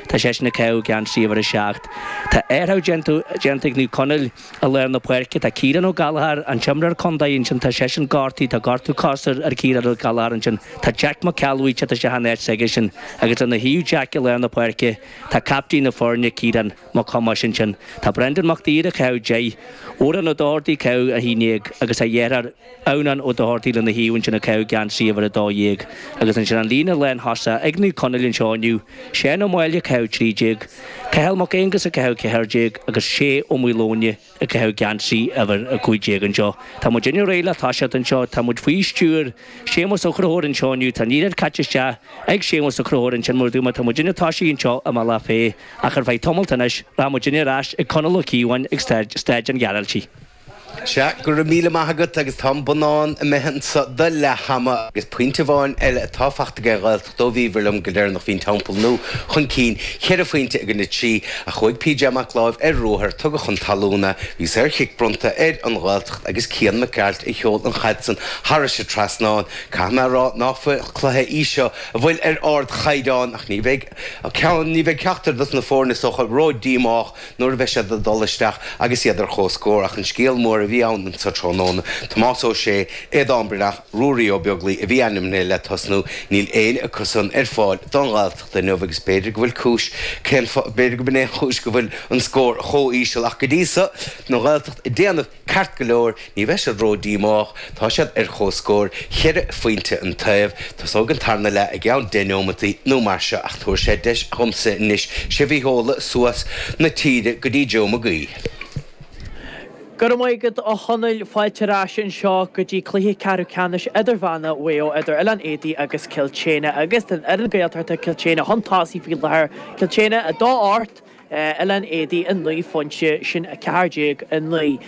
Tá seisean ag caitheamh geansaí uimhir a seacht. Tá athrú déanta ag Naomh Conaill i lár na páirce. Tá Ciarán Ó Gallchóir, an t-imreoir contae, ansin. Tá seisean gortaithe. Tá gortú coise ar Ciarán Ó Gallchóir ansin. Tá Jack Mac Ceallbhuí tite isteach in áit s'aigesean. Agus lena thaobh, Jack, i lár na páirce, tá captaen na foirne, Ciarán Mac Aonghais ansin. Tá Brendan Mac Duibhir ag caitheamh deich. Odhrán Ó Dochartaigh ag caitheamh a haon déag. Agus tá a dheartháir. Eunan Ó Dochartaigh lena thaobh ansin ag caitheamh geansaí uimhir 12 agus ansin an líne lánthosaigh ag Naomh Conaill anseo inniu, Seán Ó Máille ag caitheamh 13, Cathal Mac Aonghais ag caitheamh 14 agus Shay Ó Maoileoine ag caitheamh geansaí uimhir 15 anseo. Tá muid chóir a bheith réidh le toiseacht anseo, tá muid faoi stiúir Séamus Ó Crothúir anseo inniu, tá an liathróid caite isteach ag Séamus Ó Crothúir ansin mar dúirt mé, tá muid i ndiaidh tosú anseo i mBealach Féich ach ar feadh tamalt anois, rachaidh muid ar ais chuig Conall Ó Cíobháin ag Staid an Ghearaltaigh. Sea, go raibh míle maith agat, agus tá an bonnán imithe anso do leath-am, agus pointe amháin eile atá fachta aige an nGaeltacht ó bhíobhair liom go deireanach bhí an Teampall Nua chun cinn, cheithre phointe i gcoinne a trí, ach chuaigh PJ Mac Láimh ar ruathar, tugadh chun talún é, bhí saorchic bronnta ar An Ghaeltacht agus Cian Mac Gearailt a sheol an chaid san thar an dtrasnán. Caithfidh mé a rá nach cluiche í seo a bhí ar ard-chaighdeán, ach ní bheidh ceachtar dos na foirne so ró-díomách nuair a bheidh siad ag dul isteach agus iad ar chomhscór. Ach an scéal mór a bhí anso tráthnóna, Tomás Ó Sé, Aidan Breathnach, Ruairí Ó Beaglaoi a bhí ainmnithe le tosnú, níl éinne acusan ar fáil don Ghaeltacht inniu agus b'fhéidir go bhfuil cúis, cén fáth, b'fhéidir go b'in é an chúis go bhfuil an scór chomh íseal acu go dtí so, don Ghaeltacht go háirithe. Ceart go leor, ní bheidh siad ró-díomách, tá siad ar chomhscór, cheithre phointe an taobh, tosóidh an tarna leath i gceann deich neomataí nó mar seo ach tabharfaidh sé deis domsa anois sibh a sheoladh suas na tíre go dtí Joe Magee. Go raibh maith agat, a Chonaill. Fáilte ar ais anseo go dtí cluiche ceathrú ceannais idirmheánna Mhaigh Eo idir Oileán Éadaí agus Cill tSéadhna agus tá an fhoireann Ghaeltachta Cill tSéadhna chun tosaigh faoi láthair, Cill tSéadhna 2-8, Oileán Éadaí 9 pointe sin 14:09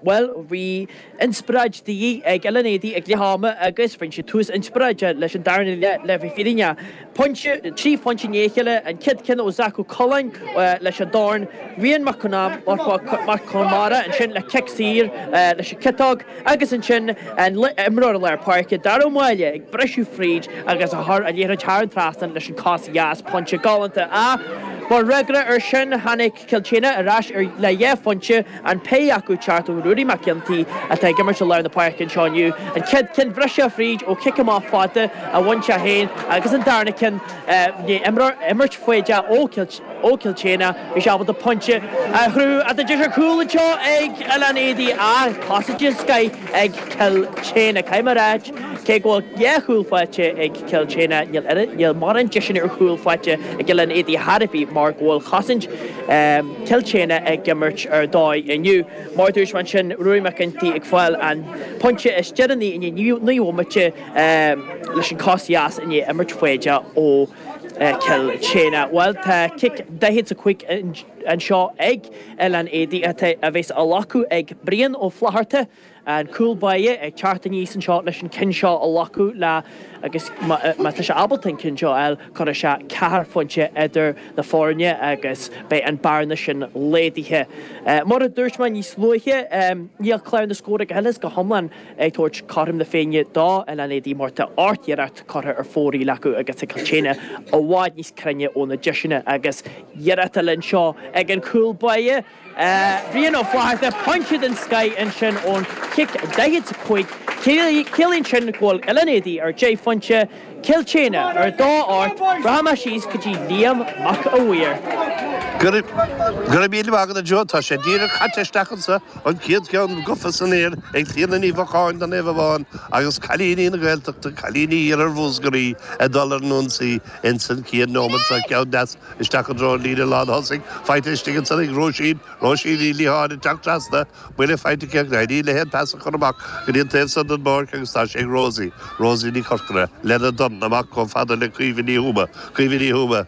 Bhuel bhí inspioráid de dhíth ag Oileán Éadaí ag leath ama agus cinnte tús inspioráideach leis an darna leath le bheith fírinneach. Pointe, trí pointe i ndiaidh a chéile, an chéad ceann ó Zac Ó Coileáin leis an dorn, Rian Mac Conmara ansin le cic saor leis an ciotóg, Agus ansin an t-imreoir i lár páirce, Darragh Ó Máille, ag briseadh fríd agus ag cur an liathróid thar an trasnán leis an cos dheas, pointe galánta. Ach mar fhreagra ar sin, tháinig Cill tSéadhna ar ais le dhá phointe, an péire acu ag teacht ó Ruairí Mac Ginty, atá ag imirt i lár na páirce anseo inniu, an chéad ceann ag briseadh fríd ó chic amach fada a bhain sé féin agus an darna ceann, imirt foighdeach ó Ó Cill tSéadhna, bhí sé ábalta pointe a chruthú as an deis ar chúl anseo ag Oileán Éadaí ach cosaint den scoith ag Cill tSéadhna. Caithfidh mé a rá, cé go bhfuil dhá chúl faighte ag Cill tSéadhna, níl mórán deiseanna ar chúl faighte ag Oileán Éadaí thar a bheith mar go bhfuil cosaint Cill tSéadhna ag imirt ar dóigh inniu. Mar a dúirt mé ansin, Ruairí McEntee ag fáil an pointe is deireanaí inné, ní bhfuil Mottet leis an cos dheas inné a imirt faoi deara ó Cill tSéadhna, bhuel tá cic daichead 's a cúig anseo ag Oileán Éadaí a bheas á ghlacadh ag Brian Ó Flatharta, an cúl báire, ag teacht aníos anseo leis an cinn seo a ghlacadh le agus má tá sé ábalta an cinn seo a fháil, cuirfidh sé ceathair phointe idir na foirne agus beidh an bearna sin laghdaithe. Mar a dúirt mé níos luaithe, níl clár na scór go huile is go hiomlán ag tabhairt cothrom na Féinne do Oileán Éadaí mar tá ocht n-iarracht curtha ar fóraoil acu agus tá Cill tSéadhna i bhfad níos cruinne óna deiseanna agus iarracht álainn anseo ag an cúl báire, Brian Ó Flatharta, pointe den scoith ansin ón chic 45. Ciallaíonn sin go bhfuil Oileán Éadaí ar deich phointe. Cill tSéadhna, ar dhá ocht, rachaidh mé síos go dtí Liam Mac a' Mhaoir. Go raibh míle maith agat a Joe, tá sé díreach caite isteach ansan, an chéad cheann gofa san aer ag Clíona Ní Mhocháin do Naomh Abán agus Cailíní na Gaeltachta, Cailíní Iarthar Mhúsgraí ag dul ar an ionsaí insan chéad neomat seo, ceann deas isteach i dtreo an líne lán thosaigh, faighte istigh ansan ag Róisín, Róisín Ní Liatháin ag teacht trasna, Buille faighte aici ach éiríonn léi an pas a chur amach go dtí an taobh san den bpáirc agus tá sé ag Rosie, Rosie Ní Chorcora, lena dorn amach chomh fada le Caoimhe Ní Thuama, Caoimhe Ní Thuama,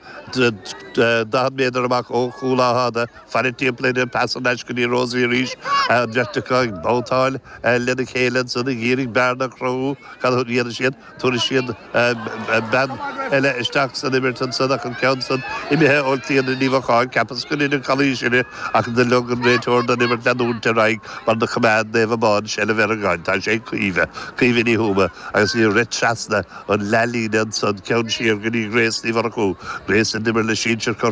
40 méadar amach ó chúl Átha Fhada, faire timpeall uirthi an pas thar n-ais go dtí Rosie arís, an bheirt acu ag babhtáil lena chéile ansan ag iarraidh bearna a chruthú. Cad a dhéanfaidh siad? Tabharfaidh siad bean eile isteach san imirt ansan ach an ceann san imithe ó Chlíona Ní Mhocháin. Cheapas gur deineadh calaois uirthi ach do lig an réiteoir don imirt leanúint ar aghaidh mar do choimeád Naomh Abán seilbh ar an gcaid. Tá sé ag Caoimhe, Caoimhe Ní Thuama, agus í ag rith trasna an leath-líne ansan ceann siar go dtí Grace Ní Mhurchú, Grace a d'imir le sinsir Chorcaí.